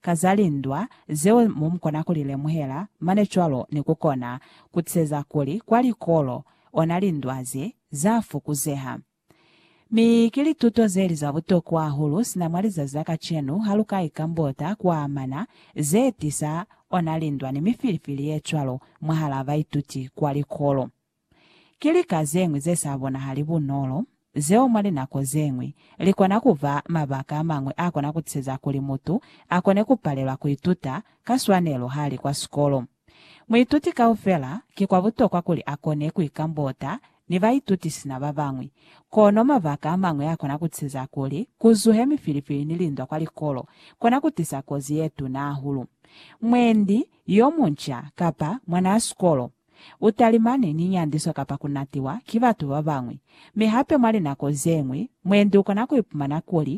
ka za lindwa zeo mo mu kona ku li lemuhela, mane cwalo ni ku kona ku teza kuli kwa likolo ona lindwa ze za fukuzeha. Mi ki lituto ze li za butokwa hahulu sina mwa lizazi la kacenu ha lu ka ikambota ku amana ze tisa ona lindwa ni mifilifili ye cwalo mwahalaa baituti kwa likolo. Ki lika zeñwi ze sa bonahali bunolo, zeo mwa linako zeñwi, li kona ku ba mabaka a mañwi a kona ku tiseza kuli mutu a kone ku palelwa ku ituta ka swanelo ha li kwa sikolo. Muituti kaufela, ki kwa butokwa kuli a kone ku ikambota ni baituti sina ba bañwi. Kono mabaka a mañwi a kona ku tiseza kuli ku zuhe mifilifili ni lindwa kwa likolo, kona ku tisa kozi ye tuna hahulu. Mwendi yo munca kapa mwanaa sikolo U talimane ni nyandiso kapa ku natiwa ki batu ba bañwi. Mi hape mwa linako ze ñwi, mwendi u kona ku ipumana kuli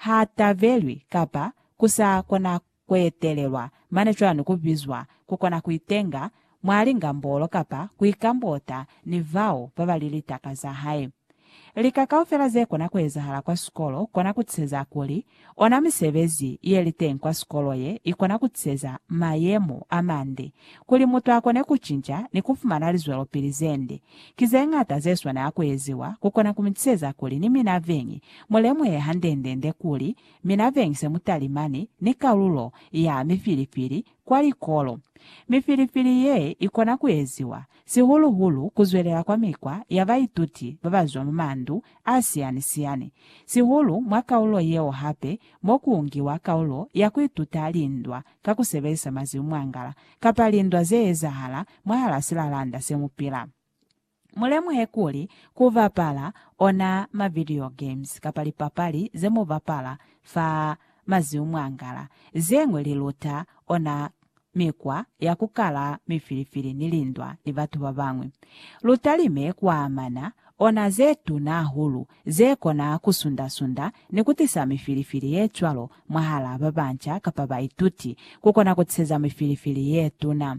ha tabelwi kapa ku sa kona ku etelelwa, mane cwani ku bizwa ku kona ku itenga mwa lingambolo kapa ku ikambota ni bao ba ba li litaka za hae. Lika kaufela ze kona ku ezahala kwa sikolo kona ku tiseza kuli ona misebezi ye li teñi kwa sikolo ye i kona ku tiseza mayemo a mande kuli mutu a kone ku cinca ni ku fumana lizwelopili ze nde. Ki ze ñata ze swanela ku eziwa ku kona ku mi tiseza kuli ni mina veñi mu lemuhe handendende kuli mina veñi se mu talimani ni kalulo ya mifilifili kwa likolo. Mifilifili ye i kona ku eziwa sihulu-hulu ku zwelela kwa mikwa ya baituti ba ba zwa mwa mandu a siyani-siyani, sihulu mwa kaulo yeo hape mo ku ungiwa kaulo ya ku ituta lindwa ka ku sebelisa mazimu-mwangala kapa lindwa ze ezahala mwahal'a silalanda se mu pila. Mu lemuhe kuli ku bapala ona ma-video games kapa lipapali ze mu bapala fa mazimu-mwangala, ze ñwi li luta ona mikwa ya ku kala mifilifili ni lindwa ni batu ba bañwi. Lu talime ku amana ona ze tuna hahulu ze kona ku sunda-sunda ni ku tisa mifilifili ye cwalo mwahal'a ba banca kapa baituti, ku kona ku tiseza mifilifili ye tuna.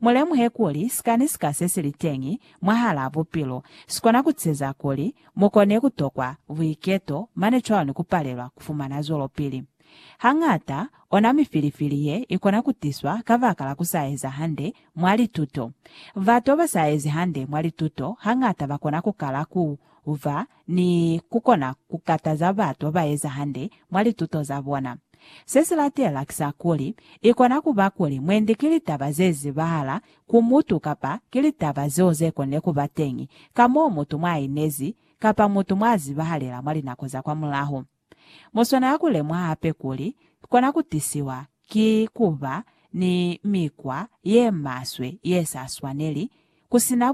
Mu lemuhe kuli sika ni sika se si li teñi mwahal'a bupilo si kona ku tiseza kuli mu kone ku tokwa buiketo mane cwalo ni ku palelwa ku fumana zwelopili. Hañata, ona mifilifili ye i kona ku tiswa kabakala ku sa eza hande mwa lituto. Batu ba sa ezi hande mwa lituto hañata ba kona ku kala ku ba ni ku kona ku kataza batu ba eza hande mwa lituto za bona. Se si latela ki sa kuli, i kona ku ba kuli mwendi ki litaba ze zibahala ku mutu kapa ki litaba zeo ze konile ku ba teñi ka moo mutu mwa inezi kapa mutu mwa zibahalela mwa linako za kwa mulaho. Mu swanela ku lemwa hape kuli kona ku tisiwa ki ku ba ni mikwa ye maswe ye sa swaneli, ku si na